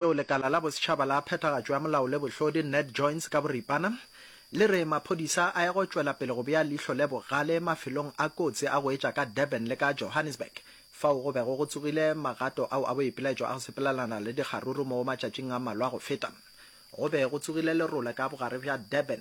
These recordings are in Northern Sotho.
yeo lekala la bosetšhaba la phethagatšo ya molao le bohlodi, Ned Joins ka boripana, le re maphodisa a ya go tšwela pele go bea leihlo le bogale mafelong a kotsi a go etša ka Durban le ka Johannesburg fao go bego go tsogile magato ao a boipelaetšo a go sepelelana le dikgaruru mo matšatšing a mmalwa go feta go be go tsogile lerole ka bogare bja Durban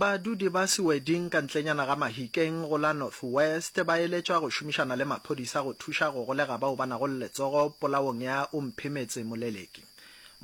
Badudi ba Seweding ka ntlenyana ga Mahikeng go la North West ba eletšwa go šomišana le maphodisa go thuša go golega bao ba nago le letsogo polaong ya Omphemetse Moleleki.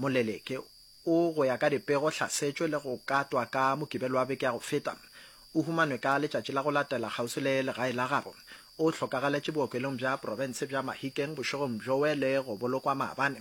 Moleleki o, go ya ka dipego, hlasetšwe le go katwa ka Mokibelo wa beke ya go feta. O humanwe ka letšatši la go latela kgauswi le legae la gabo. O hlokagaletše bookelong bja profense bja Mahikeng bošegong bjoe le go bolokwa maabane.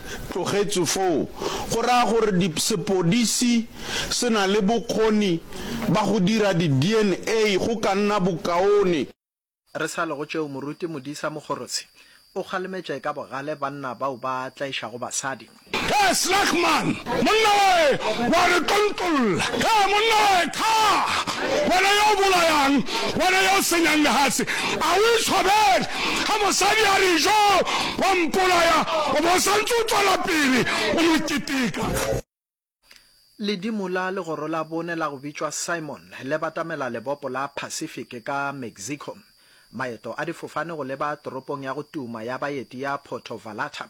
tlogetšwe foo, go raya gore di, sepodisi se na le bokgoni ba go dira di-DNA, go ka nna bokaone. Re sa le go tšeo, Moruti Modisa Mogorotshe o kgalemetše ka bogale banna bao ba tlaišago basadi. He, Slagman! Monna wae wa re tontolla! He, monna wae, thaa! Wena yo o bolayang, wena yo o senyang lehase, a o itshwabele? Ge mosadi a re, Yo wa mpolaya, o be o sa ntse o tšwela pele o mo keteka. Ledimo la legoro la bone la go bitšwa Simon le batamela lebopo la Pacific ka Mexico. Maeto a difofane go leba toropong ya go tuma ya baeti ya Puerto Vallarta.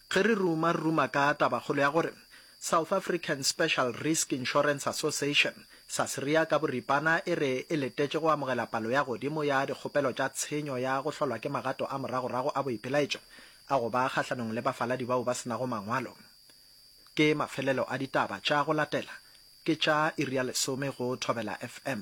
Ge re ruma, re ruma ka tabakgolo ya gore South African Special Risk Insurance Association, Sasria ka boripana, e re e letetše go amogela palo ya godimo ya dikgopelo tša tshenyo ya go hlolwa ke magato a moragorago a boipelaetšo a go ba kgahlanong le bafaladi bao ba se nago mangwalo. Ke mafelelo a ditaba tša go latela ke tša iri ya lesome go Thobela FM.